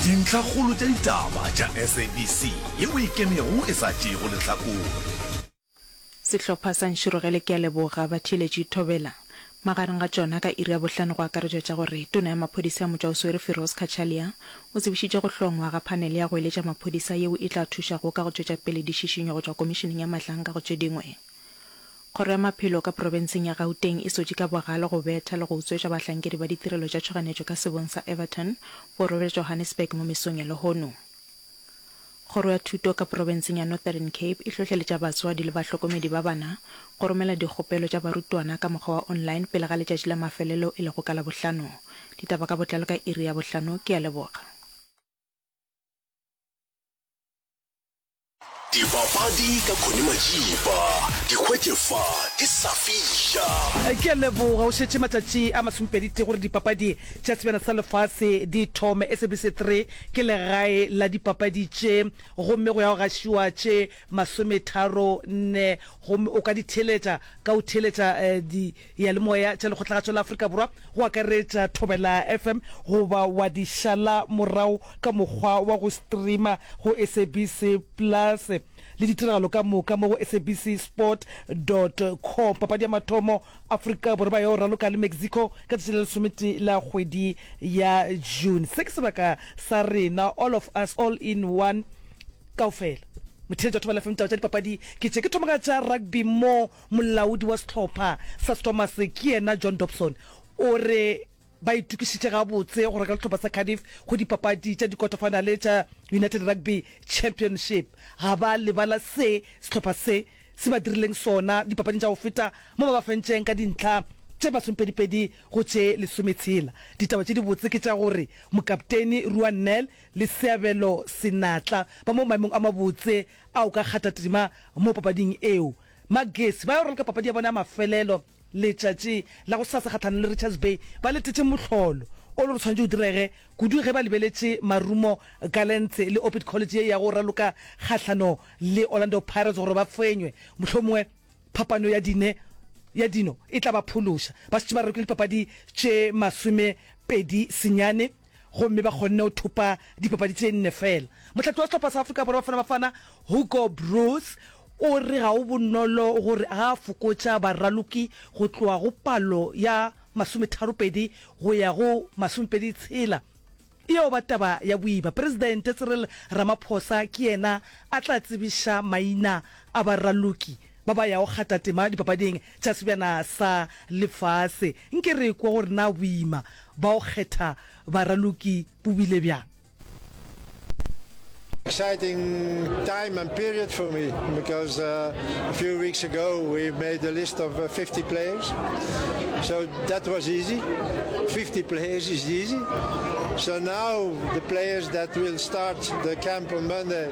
Dintlhakgolo tša ditaba tša SABC ye o e kenego e sa tšeego lehlakore. Sehlopha sa Nširogele ke a leboga batheeletši Thobela. Magareng ga tšona ka iri ya bohlano go akaretšwa tša gore Tona ya Maphodisa ya Motšwaoswere Firoz Cachalia o tsebišitše go hlongwa ga phanele ya go eletša maphodisa yeo e tla thušago ka go tšwetša pele dišišinyo go tšwa Komišeneng ya Mahlanka go tše dingwe. Kgoro ya Maphelo ka Profenseng ya Gauteng e sotše ka bogale go betha le go utswetša bahlankedi ba ditirelo tša tšhoganetšo ka sebong sa Everton, Foro bja Johannesburg mo mesong ya lehono. Kgoro ya Thuto ka Profenseng ya Northern Cape e hlohleletša batswadi le bahlokomedi ba bana go romela dikgopelo tša barutwana ka mokgwa wa online pele ga letšatši la mafelelo e lego ka Labohlano. Ditaba ka botlalo ka iri ya bohlano. Ke a leboga. Dipapadi ka Connie Majiba, di hwetše fa di sa fiša. Ke a leboga. Go šetše matšatši a masomepeditee gore dipapadi tša sebjana sa lefase di thome. SABC 3 ke legae la dipapadi tše gomme go ya go gašiwa tše masometharo nne gomme o ka di theeletša ka go theeletša di Diyalemoya tša Lekgotlagatšo la Afrika Borwa, go akaretša Thobela FM goba wa di šala morago ka mokgwa wa go streamer go SABC Plus le ditiragalo ka moka mo go SABC Sport dot co. Papadi ya mathomo Afrika Borwa yeo raloka le Mexico ka tšatši la lesometee la kgwedi ya June. Se ke sebaka sa rena, all of us, all in one kaofela. Motheetša wa Thobela FM, ditaba tša dipapadi ke tše. Ke thoma ka tša rugby mo. Molaodi wa sehlopha sa Stormers ke yena John Dobson o re ba itokišitše gabotse go reka sehlopha sa Cardiff go dipapadi tša dikwaterfinale tša United Rugby Championship. Ga ba a lebala se sehlopha se se ba dirileng sona dipapading tša go feta mo ba ba fentšeng ka dintlha tše masomepedipedi go tše lesometshela. Ditaba tše dibotse ke tša gore mokapteini Ruan Nel le Seabelo Senatla ba mo maemong a mabotse a go ka kgatha tema mo papading eo. Magesi ba yo raloka papadi ya bona ya mafelelo letšatši la gosasa kgahlanong le Richards Bay ba letetše mohlolo o lo re tshwanetše o direge kudu ge ba lebeletše Marumo Gallants le Orbit College ye ya go raloka kgahlano le Orlando Pirates gore ba fenywe. Mohlomongwe phapano ya dine ya dino e tla ba phološa. Ba šetše ba ralokile dipapadi tše masomepedi senyane. gomme ba kgonne go thopa dipapadi tše nne fela. Mohlato wa sehlopha sa Afrika Borwa Bafana Bafana, Hugo Broos, o re ga go bonolo gore a ka fokotša baraloki go tloga go palo ya masometharopedi go ya go masomepedi tshela. E yo ba taba ya boima. Presidente Cyril Ramaphosa ke yena a tla tsebiša maina a baraloki. ba ba yago kgatatema dipapading tša sebjana sa lefase. Nke re ekwa gore na boima ba go kgetha baraloki bo bile bjang. Exciting time and period for me because a few weeks ago we made a list of 50 players so that was easy, 50 players is easy so now the players that will start the camp on Monday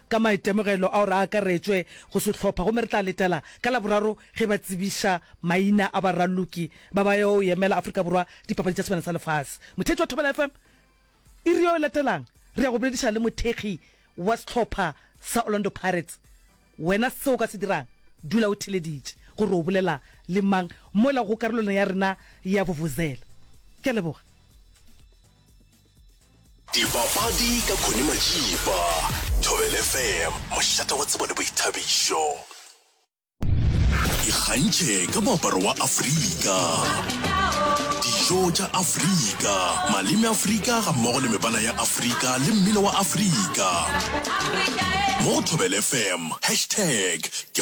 ka maitemogelo a gore a akaretšwe go sehlopha gomme re tla letela ka Laboraro ge ba tsebiša maina a baraloki ba ba yo emela Afrika Borwa Dipapading tša Sebana sa Lefase. Motheetši wa Thobela FM, Iri yo e latelang re ya go bolediša le mothekgi wa sehlopha sa Orlando Pirates wena se o ka se dirang dula o theleditše gore o bolela le mang mola go karolwana ya rena ya Vuvuzela. Ke a leboga. Dipapadi ka Connie Majiba, Thobel FM, mošate wa tsebo le boithabišo. Ikgantšhe ka moaparo wa Afrika, dijo tša Afrika, maleme a Afrika ga mmogo le mebala ya Afrika le mmino wa Afrika mo go Thobel FM, hashtag ke